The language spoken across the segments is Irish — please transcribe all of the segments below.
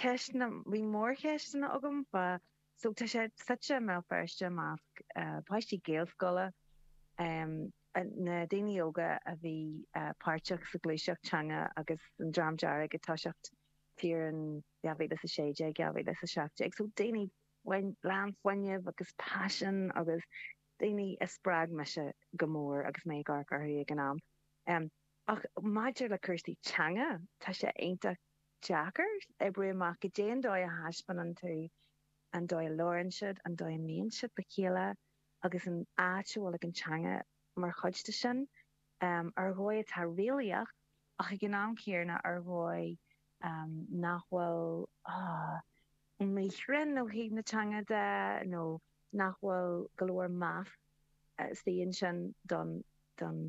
ceisteanna, bhí mórcheist agam fá so tá sé suite i mBéal Feirste i measc páistí Gaelscoile, na daoine óga a bhí páirteach sa ghluaiseacht teanga agus an Dream Dearg ag toiseacht thiar ann 2016, 2017 so daoine lán fuinnimh agus paisean agus daoine a spreag mise go mór agus mé ag amharc orthu ag an am. Ach maidir le cúrsaí teanga, tá sé iontach. deacair oibriú amach goidé an dóigh a thaispeánann tú an dóigh a labhrann siad, an dóigh a mbíonn siad le chéile agus an áit a bhfuil ag an teanga mar chuid de sin, ar dhóigh atá réalaíoch ach ag an am chéanna ar dhóigh nach bhfuil. míchruinn ó thaobh na teanga de nó nach bhfuil go leor meas istigh ansin don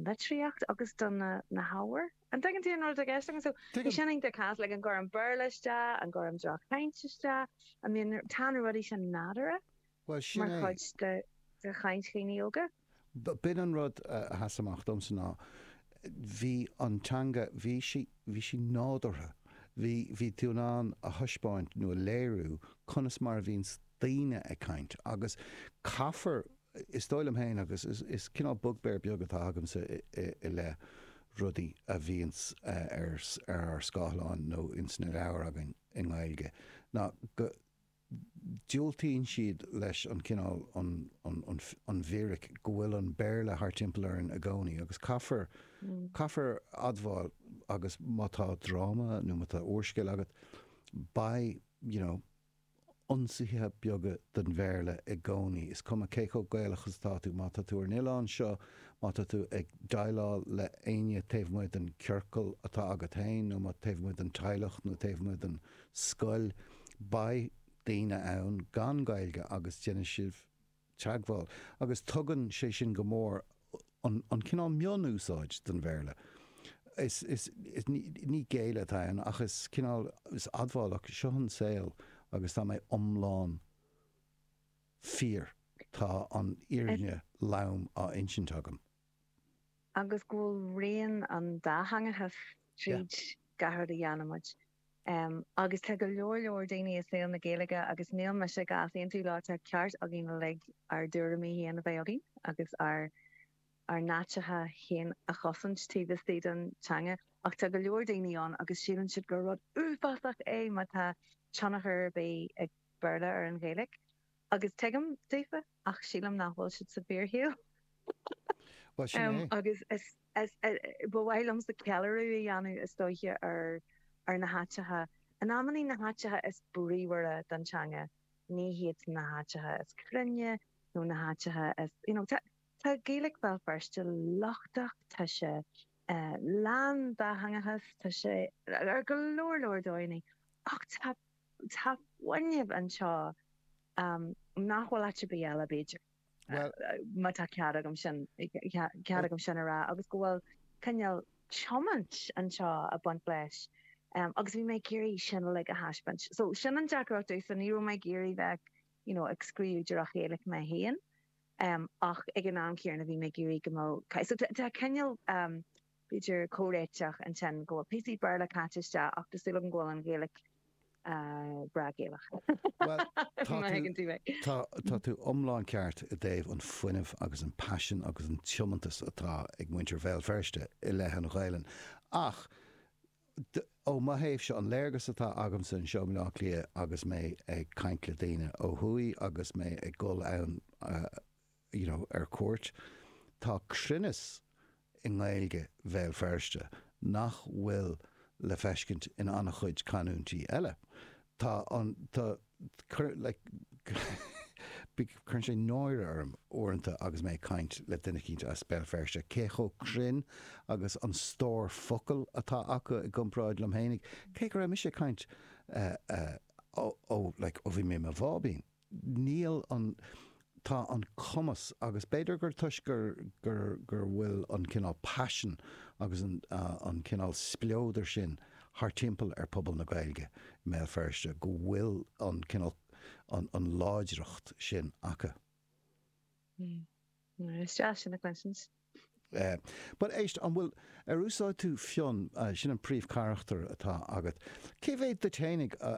litríocht agus do na hábhair. An dtuigeann tú an rud atá i gceist agam? So bhí sin iontach casta, an gcuirim Béarla isteach, an gcuirim droch-chaint isteach. I mean tá na rudaí sin nádúrtha. Bhuel, sin é. Mar chuid de chaint dhaoine óga? B'in an rud a sheas amach domsa ná bhí an teanga, bhí sí, bhí sí nádúrtha. Bhí, bhí tú in ann a thaispeáint nó a léiriú conas mar a bhíonns daoine ag caint agus caithfear, is dóigh liom féin agus is cineál bugbear beag atá agamsa i leith rudaí a bhíonns ar ár scáileáin nó ins na leabhair againn i nGaeilge, ná go. diúltaíonn siad leis an gcineál an bhfíric go bhfuil an Béarla thar timpeall orainn i gcónaí agus caithfear caithfear admháil agus má tá dráma nó má tá úrscéal agat beidh you know ionsaithe beaga den Bhéarla i gcónaí is cuma cé chomh Gaelach is atá tú má tá tú ar an oileán seo má tá tú ag déileáil le éinne taobh amuigh den ciorcal atá agat féin nó má taobh amuigh den teaghlach nó taobh amuigh den scoil, beidh daoine ann gan Gaeilge agus déanfaidh sibh teagmháil. Agus tugann sé sin go mór an cineál mion-úsáid den Bhéarla. Is ní géilleadh atá ann ach is cineál, is admháil ach, seo an saol agus tá mé iomlán fíor, tá an fhírinne lom á insint agam. Agus go bhfuil rian an dátheangachais tríd gach rud a dhéanaimid. Agus tá go leor leor daoine i saol na Gaeilge, agus níl mise ag easaontú leo, tá ceart againn uilig ár dtuairimí féin a bheith againn agus ár n-áiteacha féin a chosaint taobh istigh den teanga, ach tá go leor daoine ann agus síleann siad gur rud uafásach é má tá tionchar ar bith ag Béarla ar an Ghaeilge. Agus tuigim, daofa, ach sílim nach bhfuil siad sa bhfíorshaol. Bhuel, sin é. Agus ba mhaith liomsa ceiliúradh a dhéanamh, is dóiche, ar na háiteacha. In amanna, na háiteacha is bríomhaire don teanga, ní hiad na háiteacha is cruinne nó na háiteacha is, you know, tá Gaeilic Bhéal Feirste lochtach, tá sé lán dátheangachais, tá sé ar go leor, leor dóigheanna, ach tá Tá fuinneamh anseo nach bhfuil áit ar bith eile, b'fhéidir, má tá cead agam sin a rá, agus go bhfuil cineál tiomáint anseo ag baint leis agus bhí mé ag iarraidh sin uilig a thaispeáint. So, sin an deacracht sílim. Ní raibh mé ag iarraidh bheith you know ag scríobh drochGhaeilge mé féin ach ag an am chéanna bhí mé ag iarraidh go mbeadh, so tá cineál. B'fhéidir comhréiteach ansin go bhfuil píosaí Béarla caite isteach ach tá súil agam go bhfuil an Ghaeilge breá Gaelach. Bhuel, tá tú iomlán ceart i dtaobh an fuinneamh agus an paisean agus an tiomantas atá ag muintir Bhéal Feirste i leith an Ghaelainn, ach ó mo thaobhse, an léargas atá agamsa anseo i mBleá Cliath agus mé ag caint le daoine ó thuaidh agus mé ag gabháil ann, you know, ar cuairt. Tá cruinneas i nGaeilge Bhéal Feirste nach bhfuil le feiscint in an-chuid canúintí eile. Tá an, tá, cuir, like, cuireann sé náire orm uaireanta agus mé ag caint le duine éicint as Béal Feirste cé chomh cruinn agus an stór focal atá acu i gcomparáid liom fhéinig, cé go raibh mise ag caint, eh, eh, oh, oh, like, ó bhí mé i mo bháibín. níl an, tá an cumas, agus b'fhéidir gur toisc gur, gur, gur bhfuil an cineál paisean agus an, an cineál spleodar sin thart timpeall ar phobal na Gaeilge i mBéal Feirste, go bhfuil an cineál, an, an láidreacht sin acu. Mm. Is deas sin a chluinstin. Eh, but éist, an bhfuil, ar úsáid tú Fionn, sin an príomhcharachtar atá agat, cé mhéad díot fhéinig a,